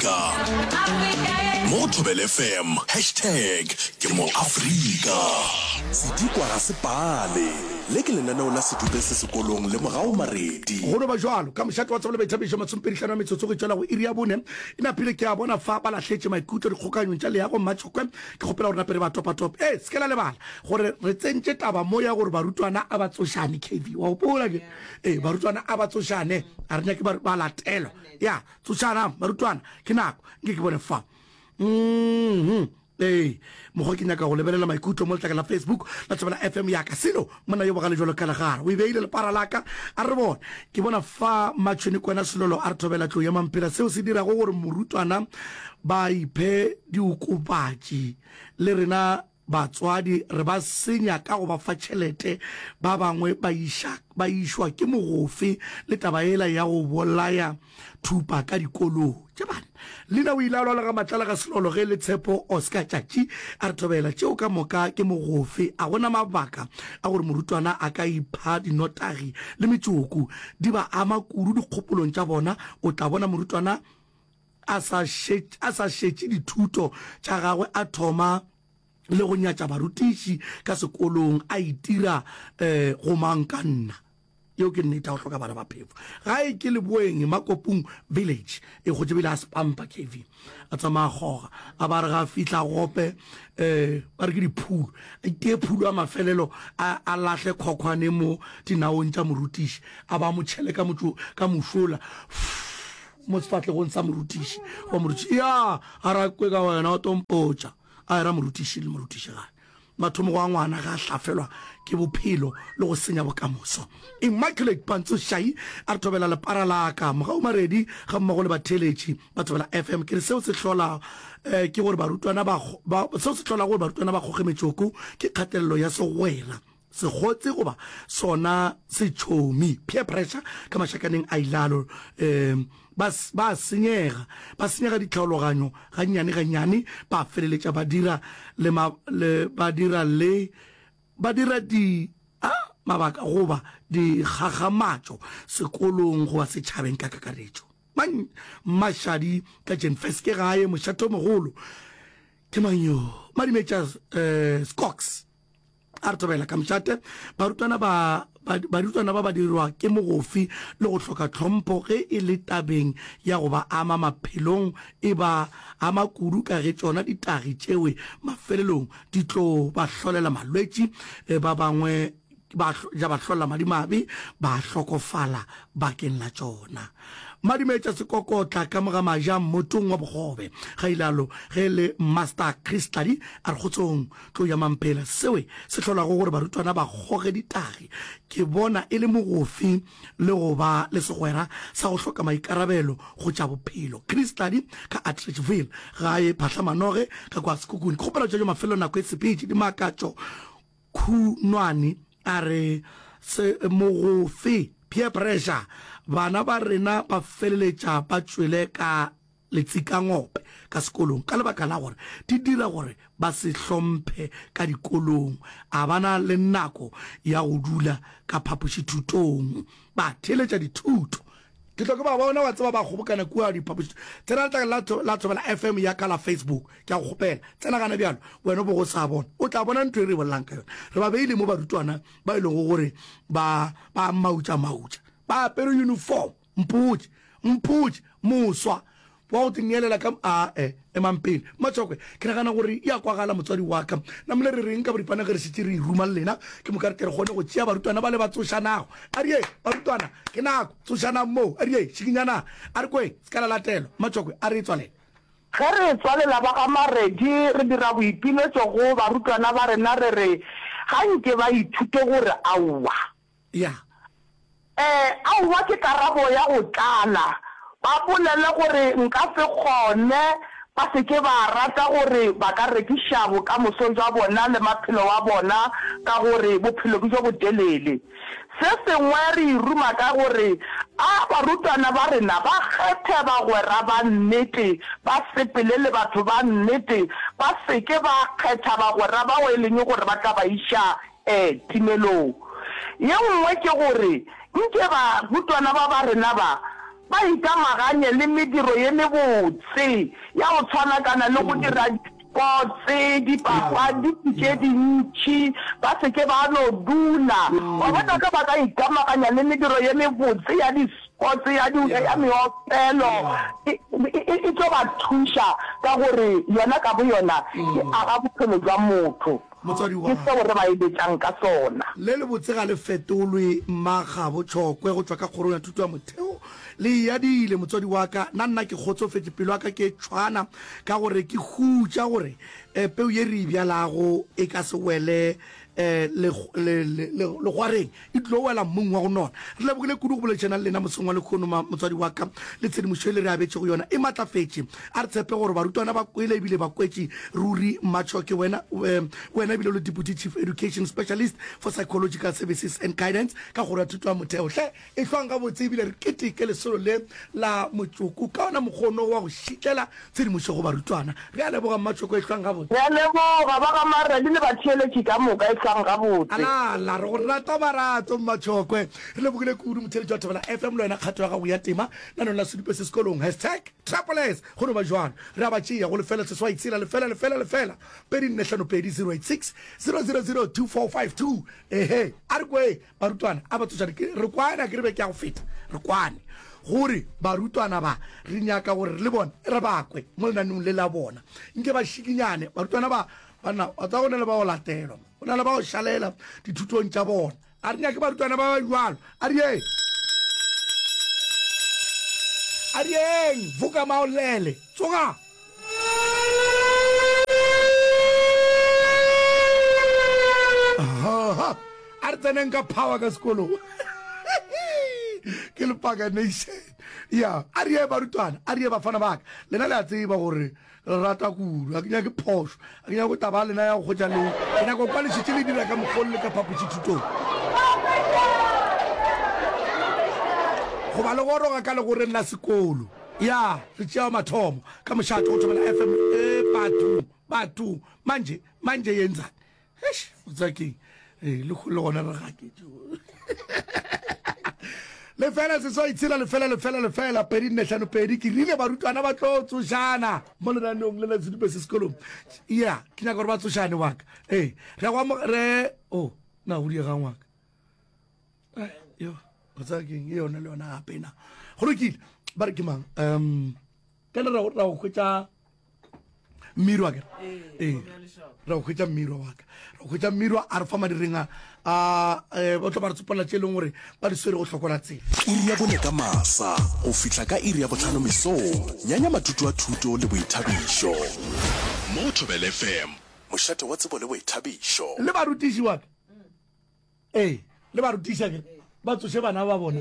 Afrika. Mo go Thobel FM, hashtag ke mo Afrika. Sedikwa ga se pale. Le ke lenaneo la sedupe se sekolong le morago maredi. Go no ba jwalo ka mošate wa tsebo le baithabišo masompedihlano a metsotso go itšwela go iri ya bone e napile. Ke a bona fa ba lahletše maikutlo dikgokaganyong tša leago. Mmatšokwe, ke kgopela gore nape re ba topatope. Ee, se ke la lebala gore re tsentše taba mo ya gore barutwana a ba tsošane. Kevy, wa gopola? Ee, barutwana a ba tsošane, a re nyake ba latelwa. Ya. Tsošanang, barutwana, ke nako. Nke ke bone fa. Mm-hmm. Ee, mokgwa ke nyaka go lebelela maikutlo mo letlaka la Facebook la Tšabela FM yaka. Selo, monna yo bogale jalo ka legara, o e beile lepara laka. A re bone, ke bona fa Matšhweni kwena Selolo a re thobela tlou ya mampela, seo se dirago gore morutwana ba iphe diokopatši le rena. Batswadi re ba senya ka go ba fa tšhelete, ba bangwe ba iša ba išwa ke mogofe le taba yela ya go bolaya thupa ka dikolong. Tšebane Lina o ile a lwala ga matlala ga selolo ge le Tshepo Oscar Tšatši a re thobela tšeo ka moka ke mogofe, a go na mabaka a gore morutwana a ka ipha dinotagi le metsoko di ba ama kudu dikgopolong tša bona, o tla bona morutwana A sa šetše, a sa šetše dithuto tša gagwe, a thoma le go nyatša barutiši ka sekolong, a itira eh, go mang ka nna. Yeo ke nnete, a o hloka bana ba phefo. Gae ke Leboeng, Makopung Village, e gotše bile a Spampa KV. A tsamaya a kgoga, a ba re ga a fihla gope, eh, ba re ke diphulo, a itee phulo ya mafelelo, a, a lahle khokhwane mo dinaong tša morutiši, a ba mo tšhele ka motšo, ka mošola. Fff. mo sefahlegong sa morutiši wa morutiši ya a ra kwe ka wena o tompotša a era morutiši le morutiši gae mathomo go a ngwana ga a hlafelwa ke bophelo le go senya bokamoso immaculate pantso shai a re thobela lepara laka mogau maredi ga mmogo le batheeletši ba thobela fm ke re seo se hlola eh, ke gore barutwana ba seo se hlola gore barutwana ba kgoge metsoko ke kgatelelo ya segwera segotse goba sona setšhomi peer pressure ka mašakaneng a ilalo um ba ba senyega ba senyega ditlhaologanyo gannyane gannyane ba feleletša ba dira le ba dira le ba dira di a mabaka goba dikgakgamatšo sekolong goba setšhabeng ka kakaretšo mmašadi ka jenfes ke gae mošathomogolo ke manyo madimetša um eh, scox a re thobela ka mšate barutwana ba barutwana ba ba dirwa ke mogofi le go hloka tlhompho ge e le tabeng ya go ba ama maphelong e ba ama kudu ka ge tšona ditagi tšewe mafelelong di tlo ba hlolela malwetši eh, ba bangwe ba ja ba hlolla madimabe ba hlokofala bakeng la tšona madimetša sekokotla ka moga maja mmotong wa bogobe ga ilalo ge le master christladi a re kgotsong tlou ya mampela, sewe se hlolago gore barutwana ba goge ditagi, ke bona e le mogofi le go ba le segwera sa go hloka maikarabelo go tša bophelo. Chris Tladi ka Atteridgeville, gae Phahlamanoge ka kwa Sekhukhune. Kgopelo tša jo mafelelo nako e sepetše di makatšo Khunwane a re se mogofi, peer pressure, bana ba rena ba feleletša ba tšwele ka letsikangope ka sekolong ka lebaka la gore di dira gore ba se hlomphe ka dikolong, a ba na le nako ya go dula ka phapošithutong ba theeletša dithuto. Ke tlo ke ba bona, wa tseba, ba kgobokana kua diphapošithutong. Tsena letlakala la Thobela FM ya ka la Facebook, ke a go kgopela, tsena gana bjalo, wena o bogo o sa bona, o tla bona ntho e re e bolelago ka yona. Re ba beile mo barutwana ba e lego gore ba, ba mautša-mautša, ba apere uniform. Mpotše, mpotše, moswa wa go te neelela ka, a-e, emang pele, Matšokwe, ke nagana gore e a kwagala, motswadi wa ka. Namile re reng ka boripana ge re šetše re e ruma le lena? Ke moka re tle re kgone go tšea barutwana bale ba tsošanago. A re yeng, barutwana, ke nako, tsošanang moo. A re yeng, šikinyanang. A re kweng, se ka la latelwa. Matšokwe, a re etswalela. Ge re etswalela ba ga Maredi, re dira boipiletšo go barutwana ba rena re re ga nke ba ithute gore aowa, Ya. Ee, aowa ke karabo ya go tlala. Ba bolele gore nka se kgone, ba se ke ba rata gore ba ka rekiša bokamoso bja bona le maphelo wa bona ka gore bophelo ke bjo botelele. Se sengwe re e ruma ka gore a barutwana ba rena ba kgethe bagwera ba nnete, ba sepele le batho ba nnete, ba se ke ba kgetha bagwera bao e leng gore ba tla ba iša Ee, timelong. Ye nngwe ke gore nke barutwana ba ba rena ba, ba ikamaganye le mediro ye mebotse ya go tswanakana le go dira dipotse, dipapadi tše dintši, ba se ke ba no dula. Wa bona, ge ba ka ikamaganya le mediro ye mebotse ya dipotse, ya di, ya meopelo, e, e, e tlo ba thuša, ka gore yona ka boyona e aga bophelo bja motho. Motswadi wa. Ke seo re ba eletšang ka sona. Le lebotse ga le fetolwe. Mma gabo Tšhokwe go tšwa ka Kgorong ya Thuto ya Motheo, Le yadile, motswadi wa ka. Na nna ke kgotsofetše. Pelo ya ka ke e tšhwana ka gore ke hutša gore peu ye re e bjalago e ka se wele le, le, le, le, legwareng. e tlilo wela mmung wa go nona. Re lebogile kudu go boledišana le lena mosong wa lekhono ma, motswadi wa ka, le tshedimošo e le re abetšego yona e matlafetše. A re tshepe gore barutwana ba kwele ebile ba kwetše ruri. Matshoke, wena, wena ebile o le Deputy Chief Education Specialist for Psychological Services and Guidance ka Kgoro ya Thuto ya Motheo. Hle, ehlwang gabotse ebile re keteke lesolo le la motsoko ka ona mokgono wa go šitlela Tshedimošo go barutwana. Re a leboga Mmatšoko e hlwang gabotse. Re a leboga ba ga Marradi le batheeletši ka moka e hlwang gabotse. Alala, re go rata Marato Mmatšokwe. Re lebogile kudu motheeletši wa Thobela FM le wena kgato ya gago ya tema nanong la sedupe se sekolong hashtag Trappolers go no ba jwalo. Re a ba tšea go lefela seswai tshela lefela lefela lefela pedi nne hlano pedi zero eight six zero zero zero two four five two. Ehe, a re kwe Barutwana, a ba tsošane, ke re kwane, a ke re be ke ya go feta, re kwane, gore barutwana ba, re nyaka gore le bona re ba kwe mo lenanong le la bona. Nke ba šikinyane, barutwana ba, banna, wa tseba go na le ba go latelwa, go na le ba go šalela dithutong tša bona. A re nyake barutwana ba ba jwalo, a re yeng, a re yeng, voka maolele, tsoga! a re tseneng ka power ka sekolo ke lepaka nation ya a re ye barutwana a re ye bafana baka lena le a tseba gore re rata kudu a ke nyake phoso Ke nyaka go taba ya lena ya go hwetša leo. Ke nyaka go kwa lešetše le dira ka mokgwa o le le ka phapošithutong. Go ba le goroga ka legoreng la sekolo. Ya, re tšea mathomo ka mošate go thomela FM. Ee, bathong, bathong. Mantše, mantše, ye ntsane. Eish, o tseba keng? ee le gona re gaketše lefela seswai tshela lefela lefela lefela pedi nne hlano pedi ke rile barutwana ba tlo tsošana mo lenaneong le la sedube se sekolong ya ke nyaka gore ba tsošane waka ee re go re o oh, na go diegang waka yo o tsaya keng e yone le yona gape na go lokile ba re ke mang um ka le ra go hwetša mmirwa ke ee ra go hwetša mmirwa wa ka ra go hwetša mmirwa a re fa madireng a eh, ba tlo ba re tsopolela tše e leng gore ba di swere go hlokola tsela iri ya bone ka masa go fihla ka iri ya botlhano mesong nyanya mathuto a thuto le boithabišo mo thobelefm mošate wa tsebo le boithabišo le barutiši wa ka ee le barutiša ke ba tsoše bana ba bona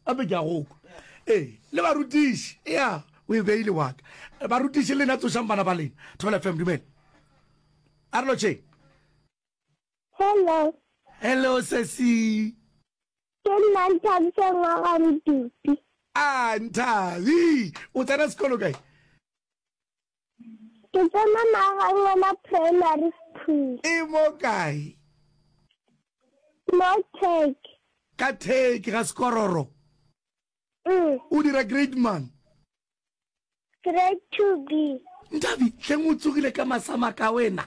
gape ke a goko ee le barutiši ya o e beile waka barutiši lena tsošang bana ba lena thobela fm dumele a re lotšheng Hello. Hello sesi. Ke nna Nthabiseng wa ga Modupi. A Nthabi, o tsena sekolo kae? Ke tsena Magangwena Primary School. E mo kae? Mo Turkey. Ka Turkey, ga Sekororo. Mm. O dira grade mang? Grade 2B. Nthabi, hleng o tsogile ka masamaka wena?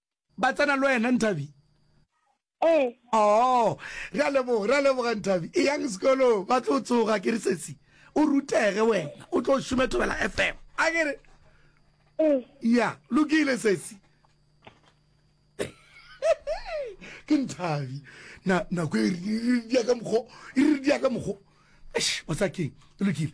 ba tsena le wena nthabi ee oo re a leboga re a leboga nthabi e yang sekolo ba tlo tsoga ke re sesi o rutege wena o tlo šome thobela fm a ke re ee ya lokile sesi ke nthabi na nako e re dia ka mokgo e re dia ka mokgo Eish, mosakeng e lokile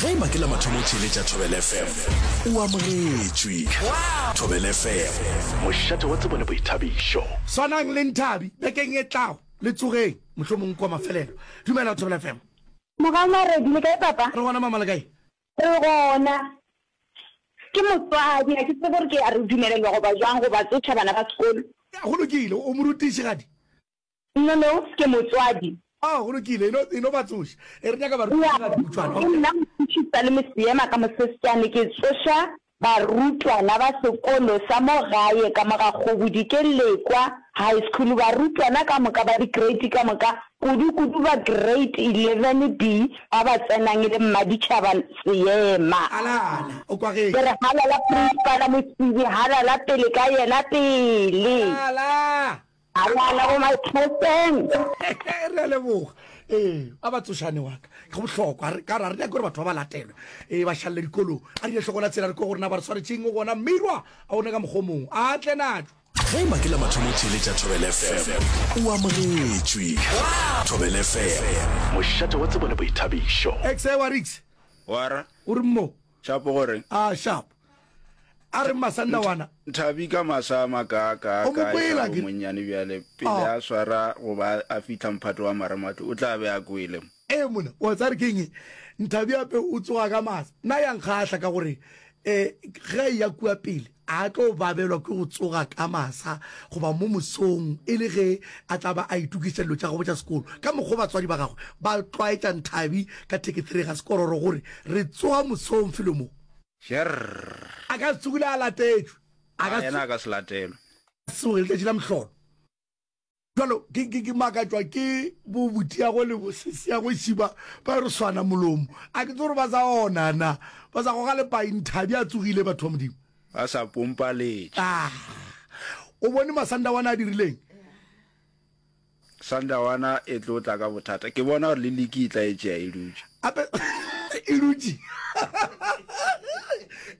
ge e ba ke la mathomo o theeletša thobel fm o amogetšwe thobel fm mošate wa tsebo le boithabišo swanang le nthabi bekeng e tlago le tsogeng mohlomong kua mafelelo dumela thobel fm Mogau Maredi, le kae papa? Re gona mama le kae? Re gona. Ke motswadi, ga ke tsebe gore ke a re dumelelwa goba jwang go ba tsoša bana ba sekolo. Go lokile, o morutišigadi. No, no, ke motswadi. Oh, go lokile, e no, e no ba tsoša. E re nyaka barutwana ba dikhutšwana. Okay. Ke nna mothušisa le moseema ka mosesjane. Ke tsoša barutwana ba sekolo sa mo gae ka mo ga kgobudi, ke lekwa high school. Barutwana ka moka ba di-grade ka moka, kudu-kudu ba grade eleven B, ba ba tsenang e le mmaditšhaba seema. Alana, o kwagetše. Ke re, Halala, Principala Mosibi, halala pele ka yena, pele! Halala! A lala go my Captain. Re a leboga ee a ba tsošane wa ka go bohlokwa re ka ra re nyake gore batho ba ba latelwe ee ba šalele dikolong a rile hlokola tsela re ko go rena ba re tshwaretšeng gona mmirwa a one ka mokgomong a tle natšo ge ma ke la mathomo theeletša thobele fm o amogetšwe thobele fm mošate wa tsebo le boithabišo exe wa rix wara o re mo Sharp o re. A Sharp. A re Masanda wana. Thabi ka masa a makaakaa ka esa go monnyane bjale pele a swara go ba a fihla mphato wa marematlou o tla be a kwele. Ee monna, wa tsare ke eng? Nthabi ape o tsoga ka masa. Na ya nkgahla ka gore ge a eya kua pele. A tlo babelwa ke go tsoga ka masa goba mo mosong e le ge a tla ba a itokiša dilo tša gabo tša sekolo? Ka mokgwa o batswadi ba gagwe ba tlwaetša Nthabi ka thekethere ga sekororo go re, Re tsoga mosong felo mo. Jerr! A ka se tsogile a latetšwe. A ka se. Yena a ka se latelwe. Tsoge letšatši la mohlolo. Bjalo, ke, ke, ke makatšwa ke bo botiago le bosesiago šiba ba re swana molomo. A ke tse gore ba sa ona na, ba sa goga lepaing, Thabi a tsogile, batho ba Modimo. Ba sa pompa letše. Ah, o bone masanda wana a dirileng? Sanda wana e tlo tla ka bothata. Ke bona gore le liki e tla e tšea e dutše. Ape, e dutše.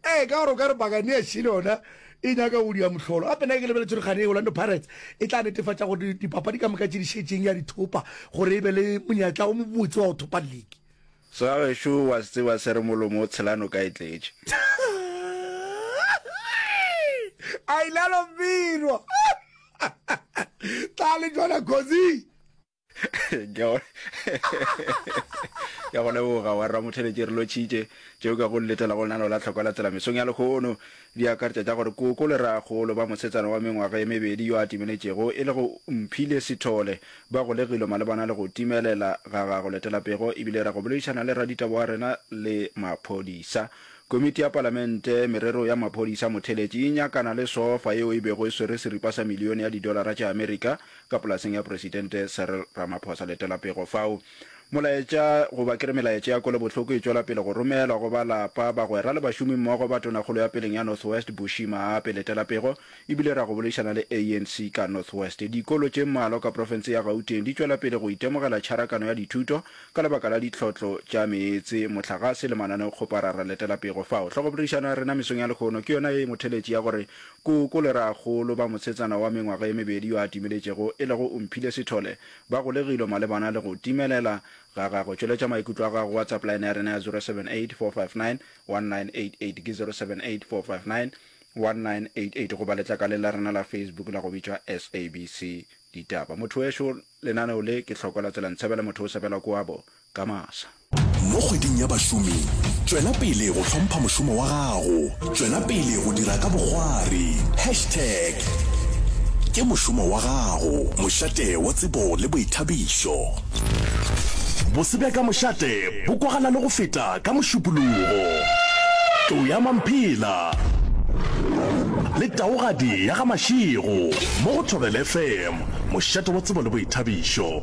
Ee, ka gore o ka re pakane ya šile yona e nyaka go dia mohlolo. Gape nna ke lebeletše gore kgane Orlando Pirates e tla netefatša gore dipapadi ka moka tše di šetšeng ya di thopa gore e be le monyetla o mobotse wa go thopa liki. Segagešo wa se tseba se re molomo o tshela noka e tletše. Ailalo Mbirwa! Tla le jona Khozi! ya go leboga wa rra motheletše re lotšhitše tšeo ka go letela go lenano la tlhoko la tsela mesong ya lekgono di akaretša tša gore koko le ragolo ba mosetsana wa mengwaga e mebedi yo a timeletšego e le go mphile sethole ba golegilwe malebana le go timelela ga gago letelapego ebile ra go boledišana le raditabo wa rena le maphodisa komiti ya palamente merero ya maphodisa motheletši e nyakana le sofa yeo e bego e swere seripa sa milione ya didolara tša amerika ka polaseng ya Presidente Cyril Ramaphosa. Letela pego fao. Molaetša, goba ke re melaetša ya kwelobohloko e tšwela pele go romelwa go ba lapa, bagwera le bašomimmogo ba Tonakgolo ya peleng ya North West, Bushy Maape. Letela pego e bile ra go boledišana le ANC ka North West. Dikolo tše mmalwa ka profense ya Gauteng di tšwela pele go itemogela tšharakano ya dithuto ka lebaka la ditlhotlo tša meetse, mohlagase le mananeokgoparara. Letela pego fao. Hlogoboledišano ya rena mesong ya lehono ke yona ye e motheletši ya gore Koko le rraagolo ba mosetsana wa mengwaga e mebedi yo a timeletšego e lego Umphile Sithole ba golegilwe malebana le go timelela ga gagwe. Tšweletša maikutlo a gago go WhatsApp line ya rena ya 0784591988 ke 0784591988 goba letlakaleng la rena la Facebook la go bitšwa SABC Ditaba. Mothowešu, lenaneo le ke hloko la Tselantshebele Mothosebela kua bo. ka masa. Mo kgweding ya bašomi, tšwela pele go hlompha mošomo wa gago. Tšwela pele go dira ka bokgwari. Hashtag Ke mošomo wa gago, mošate wa tsebo le boithabišo. Bose bja ka mošate bo kwagala le go feta ka mošupologo. Tlou ya Mamphela le taogadi ya ga Mašego mo go Thobela FM, mošate wa tsebo le boithabišo.